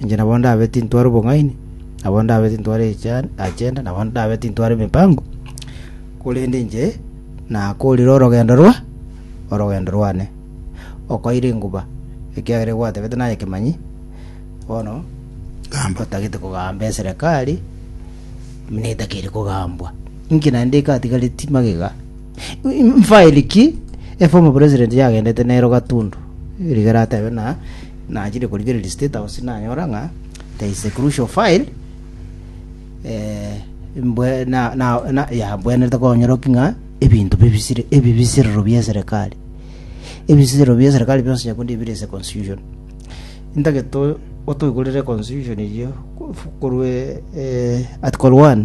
Inche nabo ndabe tintware obong'aini, nabo ndabe tintware agenda, nabo ndabe tintware emipango, korende inche nakoorire orogendo rwa orogendo rwane. Okoira enguba, ekiagera egwatebete naye kemanyi, bono gamba otagete kogamba eserekari, buna etakeire kogambwa. Inki naende ekatigareti magega? Faili ki eformer president yagendete nero Gatundu rigere atebe ng'a nachire korigereria State House nanyora ng'a there is a crucial file eh, mbwe na, na, na yabwenerete konyoroki ng'a ebinto bibisire ebibisirero bia eserekari ebisirero bia eserekari bionsi nyakundi bire ase constitution ntageto otoigorere constitution eyio korwa eh, article 1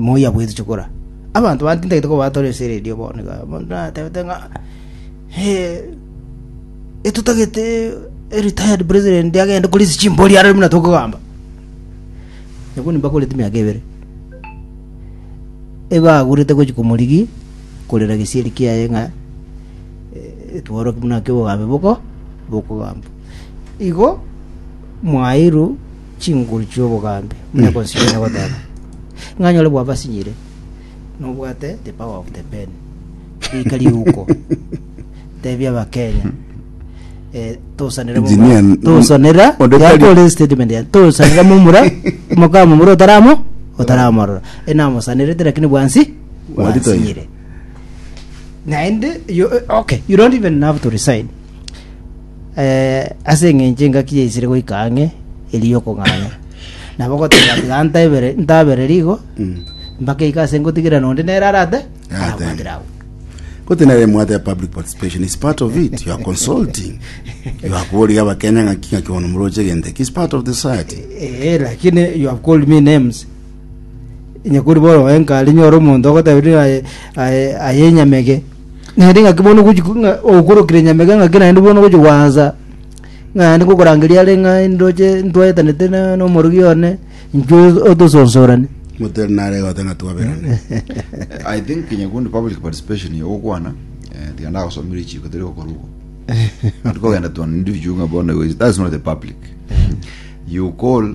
Moi abweti chikura. Abanto bande tintagete kobatora esere eria bono iga. Bono natebete ng'a etotagete retired president agende kore ase chimbori aroro buna tokogamba. Nabo nimbakorete emiaka ebere. Ebagurete gochia komorigi korera gesieri kiaye ng'a tworoke buna ake obogambe boko bokogamba. Igo mwaeirwe chinguru chi'obogambi, muna gosiria na goteba, Ng'a nyore bwabasinyire, nobwate the power of the pen, rika riuko, tebia Abakenya, eh, tosanere momura, Engineer, mm, tosanera, onde ya tari- police statement ya, tosanera momura, mokaa momura otaramo, otaramorora, enamosanerete lakini bwansi, Bwari toiyo. bwansinyire. Naende, you, okay, you don't even have to resign. eh, ase eng'encho engaki yaisire goika ang'e eri y'okong'anya. Nabo goteba ati, gantaibere, ntabere rigo, mpaka ika ase ngotigire nonde nere arate, arabwatire agwo. Kote nere mwate ya public participation is part of it. You are consulting. You are kuria bakenya ngaki ngaki bono muroche genteki is part of the society. Eh, lakini you have called me names. Onye kori bono enka ari nyore omonto ogoteberia ng'a aye- aye- aye enyamege, naende ng'aki bono ogochi ko- ng'a okorokire enyamege ng'aki naende bono ogochi gwansa ng'a naende ngokorangeria are ng'a ndoche ntwaetanete na na omorogi one, inchuo otosonsorani. motari nare gote ng'a twaberane i think kinya kundi public participation ya ogokwana eh, tiga ndagosomire chiko tari gokora obo tikogenda to an individual ng'a bono igo- that's not the public you call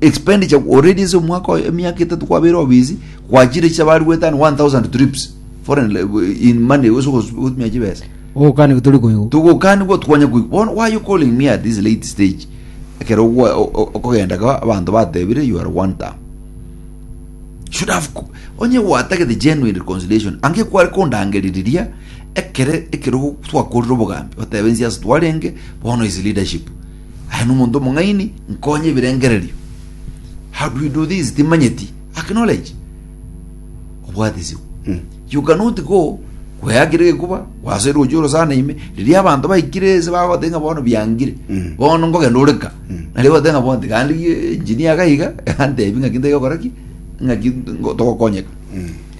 expenditure already ase omwaka oyo emiaka etatu kwabeire obisi kwachire chicha bari gwetana 1000 trips foreign le- in money ase ogotumia chibesa ogokani gotori koigwa tugokanigwa twanya kuigwa bono why you calling me at this late stage ekero ogwa- o- o- okogenda ka abanto batebire you are one term should have co- onye gwatagete genuine reconciliation ange kware kondangeririria ekere ekero twakorire obogambi otebe nsiasa twarenge bono is leadership Aye nomonto omong'aini, nkonye ebirengererio. How do you do this? Timanyeti. Acknowledge. Obwatisibwe. You cannot go kweyakire gekuba wasoire gochia orosana ime riria abanto baikire ase bagoteba ng'a bono biangire bono nkogenda oreka nario goteba ng'a bonde gandi gi- engineer gaiga antebi ng'aki ntaiga gokora ki ng'aki ngo- togokonyeka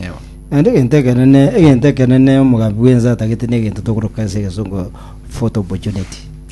Ewa. Naende egento ekenene egento ekenene omogambi bwense atagete negento tokoroka ase egesongo photo opportunity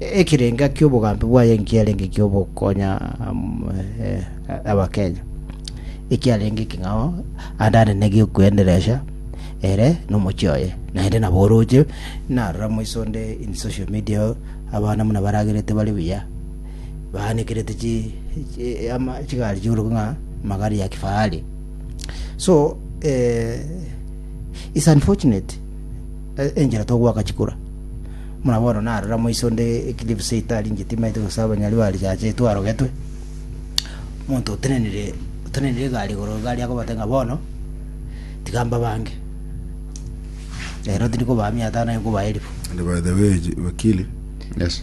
ekerenga ki'obogambi bwaye nkiarenge ki'ogokonya Abakenya, ekiarenge ekeng'ao ande anene gi'okweenderesha ere na omochie oye. Naende nabo oroche narora moiso onde in social media abana buna baragerete bare buya, baanekerete chi ama chigari chi'obotuko ng'a magari ya kifahari. So it's unfortunate. enchera togoaka chikura. Buna bono narora moise onde eclipse itari inche timaete gose abanyari ba risacha eito arogetwe omonto otenenire otenenire egari igoro egari akobate ng'a bono tiga mbabange ero tiri kobaa mia tano aye nkobae elifu And by the way, J- Wakili, Yes.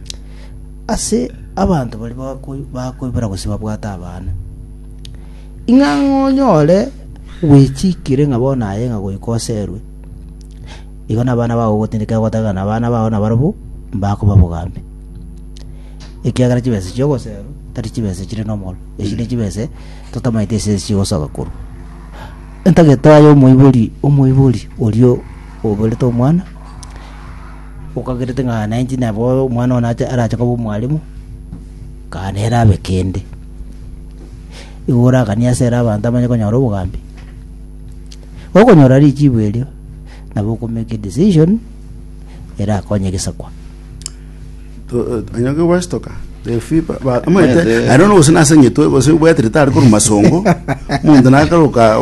Ase abanto baria bakoibora gose babwate abana, ing'o ang'e onyore gwechikire ng'a bono aye ng'a goika oserwe, igo nabana bao gogotindeka ogoteba ng'a nabana bao nabarabwo mbakoba bogambi. Ekiagera chibesa echio ogoserwa tari chibesa chire nomoro, echi ne chibesa totamanyeti ase esi chigosoka korwa. Entagete aye omoibori omoibori oria oborete omwana. Okagerete ng'a nainche nabe omwana one arache koba omwalimu, kaa nere abe kende. Igo oraganie ase ere abanto abanye konyora obogambi. Okonyora richibu erio, nabo okomake edecision erakonye egesakwa. anyoke gwestoka refi amanyete Yes, eh. aye nono gose nase ng'itwe gose obwatire tari korwa masongo omonto nakaroka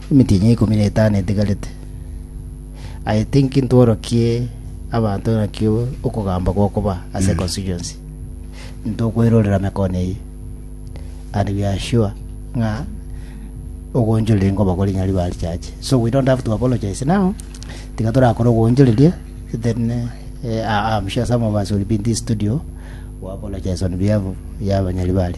Emetienyi ikomi na etano etigarete, aye tinki ntworokie abanto naki okogamba gokoba ase constituency. Ntokoirorera mekone eye. And we are sure ng'a ogonchoreria nkobakori ng'a riba richache. So we don't have to apologize now. Tiga torakore ogonchoreria then eh, I- I'm sure some of us will be in this studio we apologize on behalf ya abanyaribari.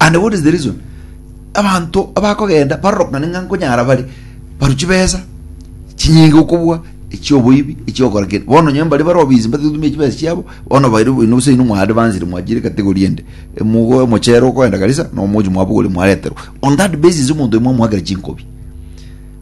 and what is the reason abanto abakogenda barorokane ng'a nkonyara bare baru chibesa chinyinge okobua echioboibi echiokora kende bono onye mbare bare obisi mbatetumia chibesa chiabo bono baire boino gose inwe mwa advanced mwachire category ende emugo omochere okoenda kabisa na omochi mwabogorire mwareterwa on that basis omonto oyo mwamoakera chinkobi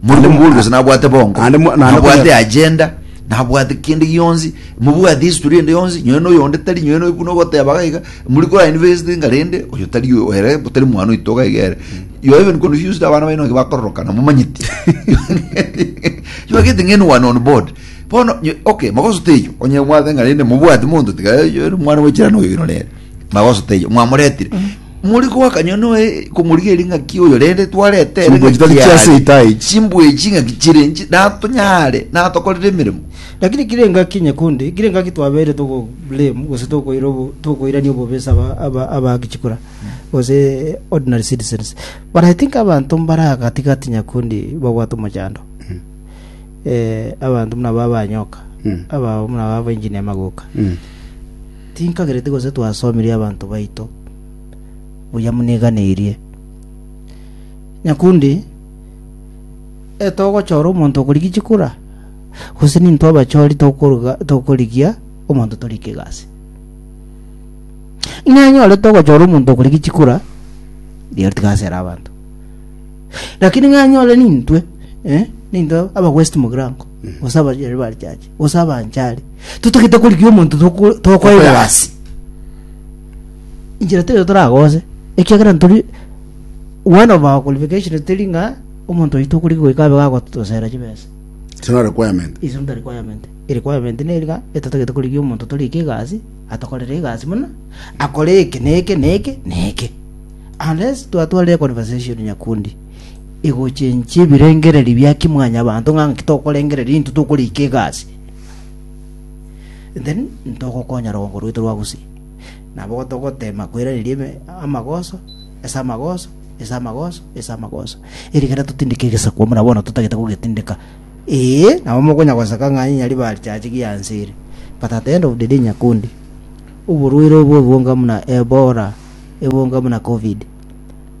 Naende Morimu bori gose nabwate bongo, Naende mo- naende nabwate konyora- agenda, nabwate kende gionsi, mobwate history ende yonsi, nyowe na oyonde tari, nyowe na buna ogoteba iga iga, muri kora invest inga rende, oyo tari oyo ere, tari mwana oito iga iga ere. You are even confused abana baino naki bakororoka, namomanyeti. You are getting anyone on board. Bono, nyo- okay, magoso teiyo, onye mwabeng'a rende mobwati monto tiga, "Eh, oyo ere mwana wechirano oyo oino nere." Magoso teiyo, mwamoretire. More goaka nyo noe komorigia eri ng'aki oyo rende twarete ere Chimbwechi ng'aki tari chia yare. Satan echi. Chimbwechi ng'aki chire inche natonyare natokorere emeremo. Lakini kire engaki nyekunde, kire engaki twabeire togo blame gose tokoira obo- tokoirania obobe ase aba- aba- abaaki chikura gose ordinary citizens. But I think abanto mbare aa gati gati nyakundi babwate omochando. Eh, abanto buna aba abanyoka, Mm. abao buna aba abaengineer magoka. Mm. Tinkagereti gose twasomirie abanto baito buya muniganeirie. Nyakundi, etogochora omonto okorigia chikura, gose nintwe abachori tokoriga tokorigia omonto torika egasi. Ng'a anyore togochora omonto okorigia chikura, riero tiga asere abanto. Lakini ng'a anyore nintwe, eh, nintwe aba West Mugirango, gose abachori bari chache. gose abanchari totagete korigia omonto toko- tokoa Tokoa egasi inchera teri toragose ekiagera ntori one of our qualification teri ng'a omonto oito okorigia goika abe gagotosera chibesa It's not a requirement. is not a requirement a requirement neri ng'a etotagete korigia omonto torikia egasi atokorere egasi buna akore eke na eke na eke na eke unless twatwarire conversation nyakundi egochenchie ebirengererio bia kimwanyabanto ng'a ng'aki tokorengereria intwe tokorika egasi then ntogokonya rogongo rwaito rwa gusii nabo togotema koiraneria eme- amagoso ase amagoso ase amagoso ase amagoso erigena totindeke egesaku buna bono totagete kogetindeka ee nabo mokonya goseka ng'a onye riba richache gianse ere but at the end of the day nyakundi oborwaire obwo obonga buna ebola ebonga buna covid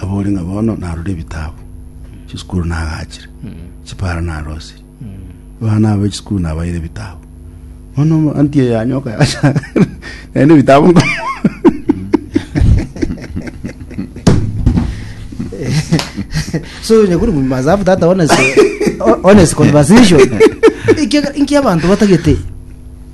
Abore ng'a bono narore ebitabu, chisukuru nagachire, chipara narosirie, abana aba chisukuru nabaire ebitabu. Bono omoanti oyo yanyoka yacha naende ebitabu nko- so nyakuri mu must have that honest, ho- honest conversation Inki- inki abantu batagete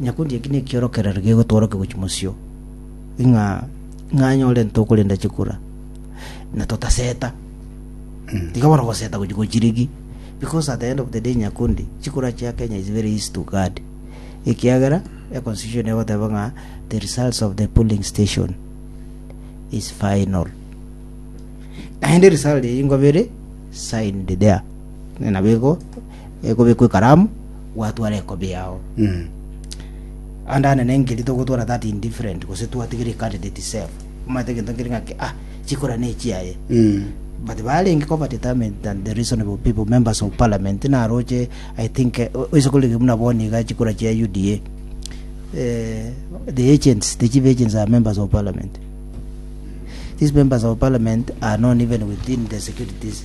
Nyakundi eki nekiorokererio gigotworokia gochia mosio, ng'a ng'anyore ntokorenda chikura, na totaseta. Tiga bono goseta gochia gochirigi, because at the end of the day Nyakundi, chikura chia Kenya is very easy to guard. Ekiagera e constitution egoteba ng'a the results of the polling station is final. Naende result eyio nkoba ere signed there. Nabo igo. ekobekwa ekaramu gwatwara ekobi yao Mm. ande anene engeri togotwara that indifferent gose twatigire candidate self omanyete egento nkeri ng'aki ah chikura ne echiaye Mm. but barenge koba determined than the reasonable people members of parliament naroche i think eh, o- oise korege buna boni iga chikura chia uda eh, the agents the chief agents are members of parliament these members of parliament are known even within the securities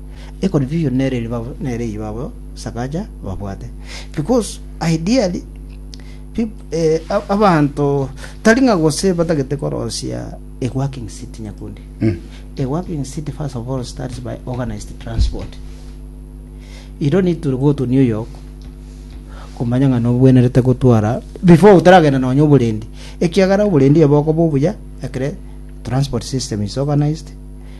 Ekori biyo nere ribabu nere eyio babo sakaja babwate. Because ideally, peop- eh, ab- abanto tari ng'a gose batagete korosia a working city nyakundi. Mm. A working city first of all starts by organized transport. You don't need to go to New York kumanya ng'a nobwenerete gotwara before otaragenda nonya oborendi ekiagera oborendi obo okoba obuya ekere transport system is organized